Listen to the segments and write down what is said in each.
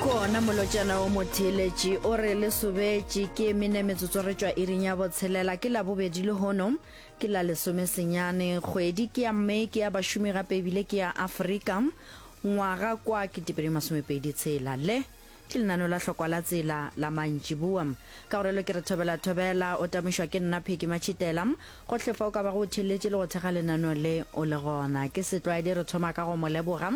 kona molotšana o motheeletše o re le sobetše ke mene metsotso re tšwa iring ya botshelela ke labobedi le hono ke la lesomesenyane kgwedi ke ya mme ke ya bašomi gape ebile ke ya aforika ngwaga kwa ke tepedi masomepedi tshela le Ke lenaneo la Hlokwa la Tsela la mantšiboa. Ka go realo ke re thobela thobela. O tamošwa ke nna Phecky Matšhitela. Gohle fa o ka bago o theeletše le go thekga lenaneo le, o le gona. Ke setlwaedi re thoma ka go mo leboga.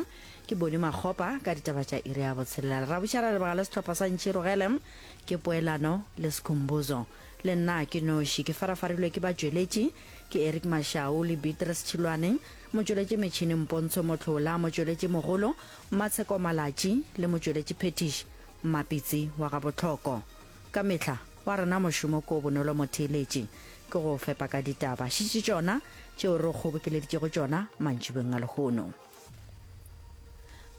Ke Boni Makgopa ka ditaba tša iri ya botshelela. Lerabošara re leboga le sehlopha sa Ntšhirogele. Ke Poelano le Skhumbuzo. Le nna ke noši. Ke farafarilwe ke batšweletši. Ke Eric Mashau le Beatrice Tšhilwane. Motšweletši metšhineng Pontsho Motlhola. Motšweletši mogolo. Matsheko Malatji le motšweletši phethiši Mmapitsi wa ga Botlhoko. Ka mehla wa rena mošomo ko Bonolo Motheeletši ke go fepa ka ditaba šitši tšona tšeo re go kgobokeleditšego tšona mantšibeng a lehono.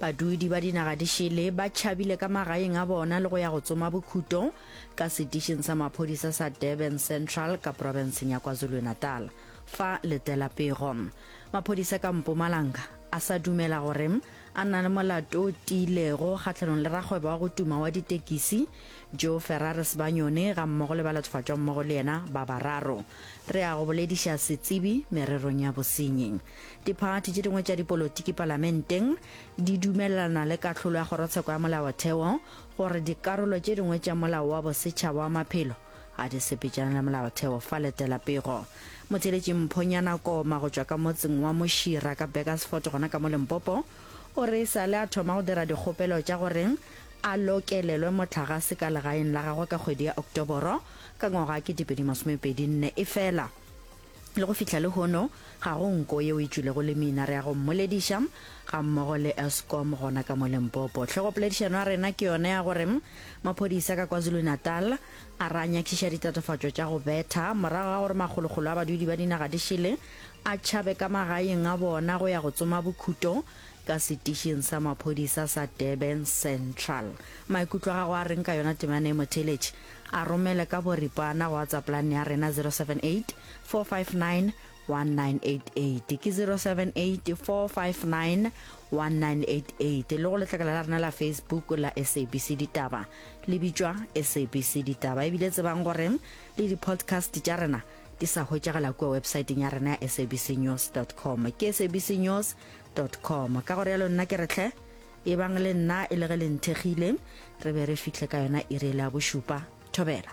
Badudi ba dinaga di šele ba tšhabile ka magaeng a bona le go ya go tsoma bokhuto ka setišing sa maphodisa sa Durban Central ka profenseng ya KwaZulu-Natal fa Letela Pego. Maphodisa ka Mpumalanga a sa dumela gore a na le molato o tiilego kgatlhanong le rakgwebo wa go tuma wa ditekisi Joe Ferrari Sebanyone ga mmogo le ba lathofatšwa mmogo le yena ba bararo. Re a go bolediša setsebi mererong ya bosenyi. Diphathi tše dingwe tša dipolotiki palamenteng di dumelelana le kahlolo ya kgorotsheko ya molaotheo gore dikarolo tše dingwe tša molao wa bosetšhaba wa maphelo a di sepetšana le molaotheo fa letela pego motheletši mphonyana koma go tšwa ka motseng wa mošira ka beckersfort gona ka mo lempopo o re e sa le a thoma go dira dikgopelo tša gore a lokelelwe motlhagase ka legaeng la gagwe ka kgwedi ya oktoboro ka ngwaga wa 2024 efela Le go fihla lehono, ga go nko yeo e tšwilego le mina re ya go mmolediša, gammogo le Eskom gona ka mo Limpopo. Hlogopoledišano ya rena ke yona ya gore maphodisa ka KwaZulu-Natal a re a nyakišiša ditatofatšo tša go betha morago ga gore makgolokgolo a badudi ba dinaga di šele a tšhabe ka magaeng a bona go ya go tsoma bokhuto ka setišing sa maphodisa sa Durban Central. Maikutlo a gago a reng ka yona Temane Motheletši? A romele ka boripana go WhatsApp line ya rena 078-459-1988 ke 078-459-1988 le go letlakala la rena la Facebook la SABC Ditaba le bitšwa SABC Ditaba ebile tsebang gore le di-podcast tša rena di sa hwetšagala kua websaeteng ya rena ya sabcnews.com ke sabcnews.com ka gore yalo nna ke retlhe Ebang le nna e le ge le nthekgile, re be re fihle ka yona iri e le ya bošupa. Thobela.